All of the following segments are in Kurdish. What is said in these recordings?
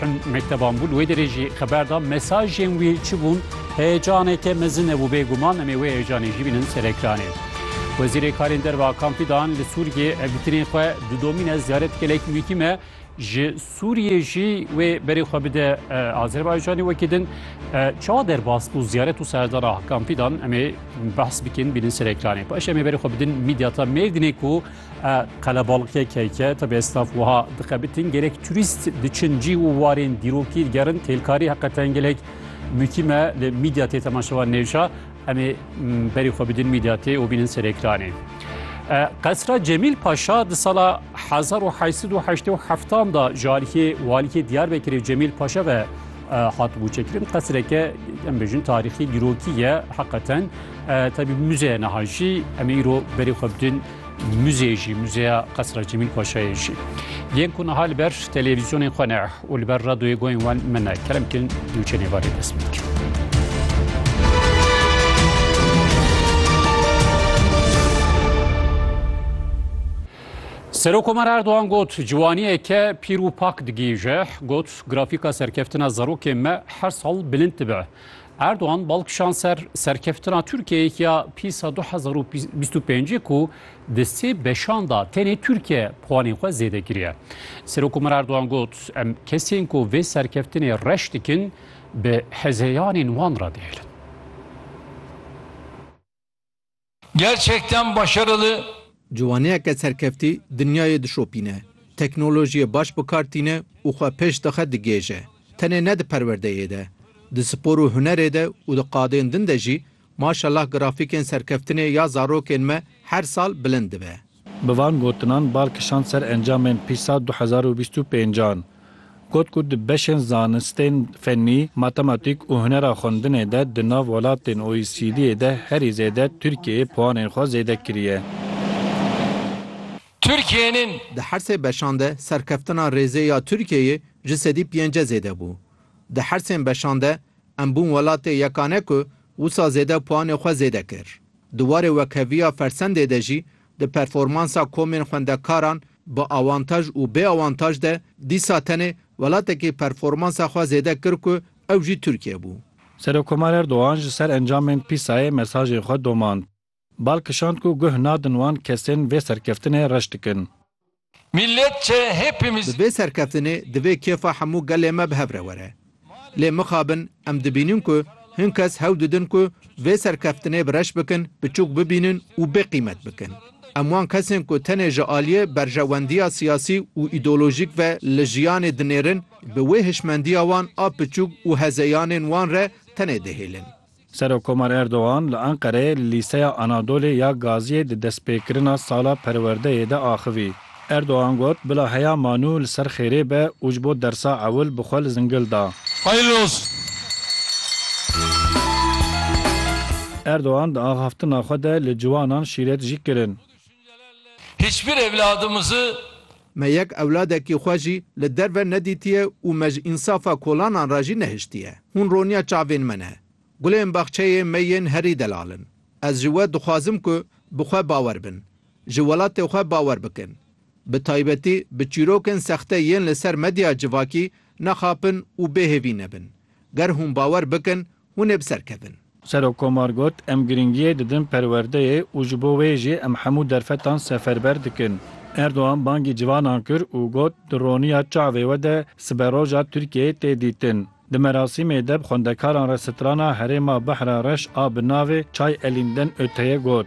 Hin mekteban bû li wê derê jî xeber da mesajên wî çi bûn heyecaneke mezin hebû bêguman em ê wê heyecanê jî bînin ser ekranê. Wezîrê Karên Derve Hakan Fidan li Sûriyê hevdîtinên xwe didomîne ziyaret gelek muhîm e ji Sûriyê jî wê berê xwe bide Azerbaycanê wekî din çawa derbas bû ziyaret û serdana Hakan Fidan em ê behs bikin bînin ser ekranê. Paş em ê berê xwe bidin mîdyata Mêrdînê ku E qelebalikê keyke te bêstaf wiha dixebitin gerek turîst diçin cî û warên dîrokî digerin têlkarî heqe tengelek mukîme li mîdya tê temaşevan nêşa em ê berî xwe bidin mîdya tê û bînin ser ekranê. Qesra Cemîl Paşa di sala 1887 da ji aliyê waliyê Diyarbekirê Cemîl Paşa ve hatibû çekirin qesreke em bêjin tarîxî dîrokî ye heqeten tebî muzeye niha jî em ê îro berê xwe bidin muzeyê jî muzeya qesra Cemîl Paşayê jî yên ku niha li ber televîzyonên xwe ne û li ber radyoyê goyên wan min ne kerem kirin nûçenê varê dest bikin. Serokomar Erdogan got, ciwaniyeke pîr û pak digihîje, got, grafîka serkeftina zarokên me her sal bilind dibe. Erdogan bal kişand ser serkeftina Tirkiyeyê ya pîsa du hezar û bîst û pêncê ku di sê beşan da tenê Tirkiye puanên xwe zêde kiriye. Serokomar Erdogan got, em kesên ku vê serkeftinê reş dikin bi hezeyanên wan re dihêlin. Gerçekten başarılı. Ciwaniyeke serkeftî dinyayê dişopîne, teknolojiyê baş bi kar tîne û xwe pêş dixe digihêje. Tenê ne di perwerdeyê de, di spor û hunerê de û di qadên din de jî maşallah grafîkên serkeftinê ya zarokên me her sal bilind dibe. Bi van gotinan bal kişand ser encamên PISA du hezar û bîst û pênc an. Got ku di beşên zanistên fennî, matematîk û hunera xwendinê de di nav welatên OECD'ê de herî zêde Tirkiyeyê puanên xwe zêde kiriye. Tirkiyeyên. Di her sê beşan de serkeftina rêzê ya Tirkiyeyê ji sedî pênce zêde bû. Di her sên beşan de em bûn welatê yekane ku wisa zêde puanê xwe zêde kir. Di warê wekheviya Fersendê de jî di performansa komên xwendekaran bi awantaj û bê awantaj de dîsa tenê welatekî performansa xwe zêde kir ku ew jî Tirkiye bû. Serokkomar Erdogan ji ser encamên PISA'yê mesajê xwe domand. Bal kişand ku guh nadin wan kesên vê serkeftinê reş dikin. Bi vê serkeftinê divê kêfa hemû gelê me bi hev re were. Lê mixabin em dibînin ku hin kes hewl didin ku vê serkeftinê bi reş bikin, biçûk bibînin û bê qîmet bikin. Em wan kesên ku tenê ji aliyê berjewendiya siyasî û îdeolojîk ve li jiyanê dinêrin, bi wê hişmendiya wan a piçûk û hezeyanên wan re tenê dihêlin. Serokkomar Erdogan li Enqereyê li Lîseya Anadolê ya Gaziyê di destpêkirina sala perwerdeyê de axivî. Erdogan got, Bila heya ma nû li ser xêrê be û ji bo dersa ewil bi xwe li zingil da. Hayırlı olsun. Erdogan di axaftina xwe de li ciwanan şîret jî kirin. Hiçbir evladımızı. Me yek ewladekî xwe jî li derve nedîtiye û me ji însafa kolanan re jî nehiştiye. Hûn roniya çavên me ne. Gulên baxçeyê me yên herî delal in. Ez ji we dixwazim ku bi xwe bawer bin. Ji welatê xwe bawer bikin. Bi taybetî bi çîrokên sexte yên li ser medya civakî nexapin û bêhêvî nebin. Ger hûn bawer bikin hûn ê bi ser kevin. Serokkomar got, Em girîngiyê didin perwerdeyê û ji bo wê jî em hemû derfetan seferber dikin. Erdogan bangî civanan kir û got, Di roniya çavê we de siberoja Tirkiyeyê tê dîtin. Di merasîmê de bi xwendekaran re strana herêma Behra Reş a bi navê Çay Elînden Öte'ye got.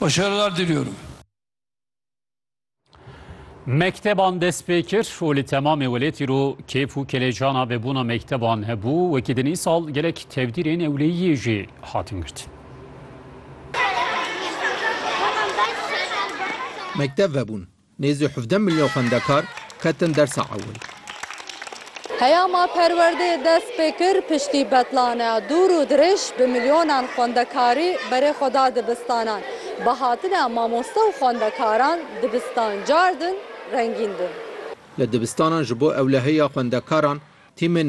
Başarılar diliyorum. Mekteban dest pê kir û li temamê welêtî ro kêf û kelejana vebûna mekteban hebû, wekî din îsal gelek tevdîrên ewleyiyê jî hatin girtin. Mektev vebûn, Nêzî hevdeh milyon xwendekar ketin dersa ewil. Heya ma perwerdeyê dest pê kir piştî betlaneya dûr û dirêj bi milyonan xwendekarî berê xwe da dibistanan. Bi hatina mamoste û xwendekaran dibistan cardin, rengîn bûn. Li dibistanan ji bo ewleheya xwendekaran tîmên